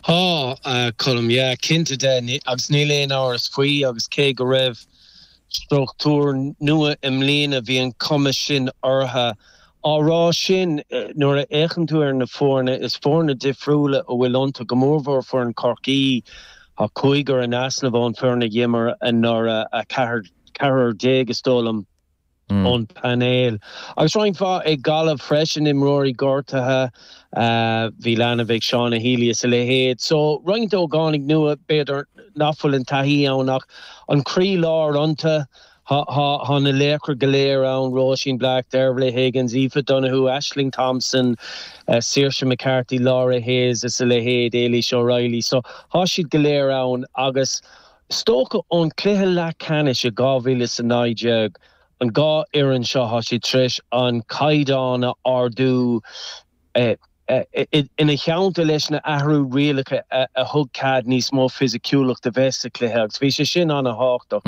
Tá, a Choilm, yeah, cinnte de, agus níl aon amhras faoi agus cé go raibh struchtúr nua i mbliana bhí an chuma sin orthu. Á rá sin, nuair a fhéachann tú ar na foirne, is foirne difriúla a bhfuil iontu, go mórmhór foireann Chorcaí. Tá cúigear in easnamh ón bhfoireann a d'imir anuraidh, ceathrar déag is dóigh liom. ón bpainéal. Agus roinnt mhaith ag Gaillimh freisin, imreoirí gortaithe, bhí leanbh ag Shauna Healy is a leithéid. So, roinnt ógánaigh nua, b'fhéidir nach bhfuil an taithí ann ach an croí láir iontu. Tá na laochra go léir ann, Róisín Black, Dervla Higgins, Aoife Donohue, Ashling Thompson, Saoirse McCarthy, Laura Hayes is a leithéid, Ailish O'Reilly. So, tá siad go léir ann agus Is dócha ón cluiche leathceannais i 2019. An dhá fhoireann seo, tá siad tar éis an caighdeán a ardú ina theannta leis na athrú rialacha a thug cead níos mó fisiciúlacht a bheith sa chluiche agus bhí sé sin ana thábhachtach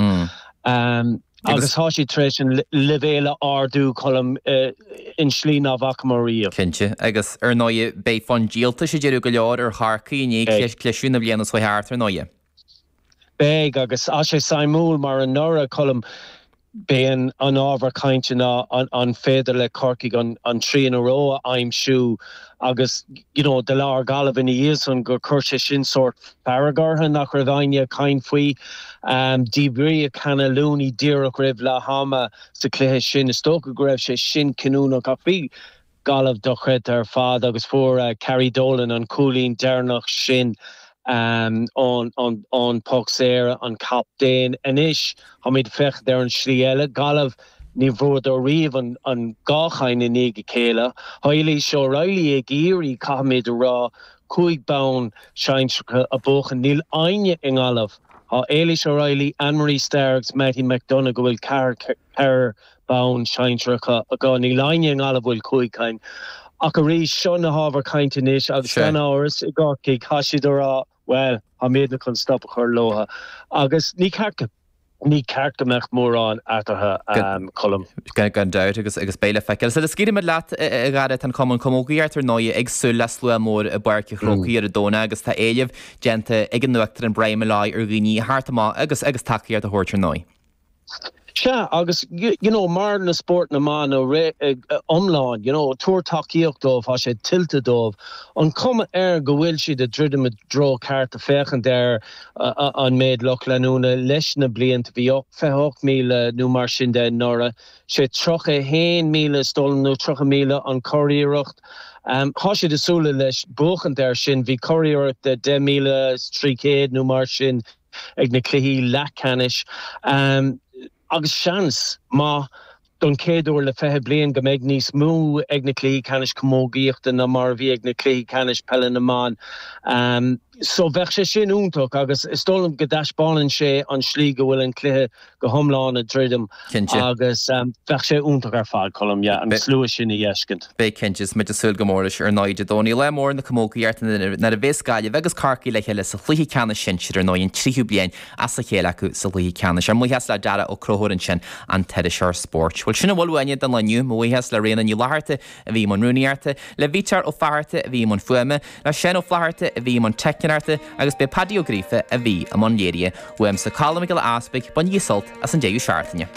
agus tá siad tar éis an leibhéal a ardú Colm in slí nach bhfacamar riamh. Cinnte. Agus ar ndóigh beidh fonn díoltais ag deireadh go leor ar Chorcaigh i ndiaidh cliseadh na bliana seo a chuaigh thart ar ndóigh. Beidh, agus tá sé suimiúil mar anuraidh, Colm, b'é an ábhar cainte ná an féidir le Corcaigh an three in a row a aimsiú agus you know do labhair Gaillimh ina dhiaidh san gur chuir sé sin sórt fearg ortha nach raibh éinne ag caint faoi. Díbríodh Hannah Looney díreach roimh leath ama sa cluiche sin. Is dócha go raibh sé sin cinniúnach ach bhí, Gaillimh dochreidte ar fad agus fuair Carrie Dolan an cúilín deireanach sin ón poc saor, an captaen. Anois táimid ag féachaint ar an slí eile. Gaillimh, ní bhfuaireadar riamh an dhá chinn i ndiaidh a chéile. Tá Ailish O'Reilly ag iarraidh, caithfimid a rá, cúig bhonn sinsearacha a bhuachan. Níl éinne i nGaillimh, tá Ailish O'Reilly, Ann Marie Starr agus Mattie McDonagh, go bhfuil ceithre bonn sinsearacha acu. Níl éinne i nGaillimh bhfuil cúig cinn ach arís, seo na hábhair chainte anois agus gan amhras, i gCorcaigh, tá siad ag rá, bhuel, táimidne chun stop a chur leo agus ní ceart go ní ceart go mbeadh mórán eatarthu, a Cholm. Gan dabht agus agus beidh le feiceáil. Sula scaoilfidh mé leat, a Chárthaigh, tá an Cumann Camógaíochta ar ndóighe ag súil le slua mór i bPáirc a' Chrócaigh ar a' Domhnach agus tá éileamh déanta ag a n-uachtarán Brian Molloy ar dhaoine a theacht amach agus agus tacaíocht a thabhairt ar ndóigh. Sea, agus you know mar na spóirt na mban ina n-iomlán, you know tabhair tacaíocht dóibh, tá sé tuillte dóibh. An cuma air go bhfuil siad ag druidim sa treo ceart féachaint ar an méid lucht leanúna leis na blianta, bhí 28,000 nó mar sin de anuraidh, sé 31,000 is dóigh liom nó 30,000 an curiarracht. Tá siad ag súil leis buachaint air sin, bhí curiarracht de 10,300 nó mar sin, ag na cluichí leathcheannais agus seans maith don chéad uair le 20 bliain go mbeidh níos mó ag na cluichí ceannais camógaíochta ná mar a bhí ag na cluichí ceannais peile na mban so bheadh sé sin iontach agus is dóigh liom go dtaispeánann sé an tslí go bhfuil an cluiche go hiomlán ag druidim agus bheadh sé iontach ar fad, Colm, yeah, an slua sin a fheiscint. Beidh, cinnte. Is muid ag súil go mór leis. Ar ndóigh, Dé Domhnaigh, lá mór na camógaíochta nuair a chasfas Gaillimh agus Corcaigh le chéile sa chluiche ceannais sinsir, ar ndóigh, an tríú bliain as a chéile acu sa gcluiche ceannais. Ár mbuíochas le Darragh Ó Conchúir ansin, an t-iriseoir spóirt. Bhuel, sin a bhfuil uainne don lá inniu. Mo bhuíochas le Ríona Ní Fhlatharta a bhí i mbun rúnaíochta, le Peter Ó Fátharta a bhí i mbun fuaime, le Seán Ó Flatharta a bhí i mbun teicneoireachta agus b'é Paddy Ó Gríofa a bhí i mbun léirithe. Uaimse Colm Mac Giolla Easpaig, bain sult as an deireadh seachtaine.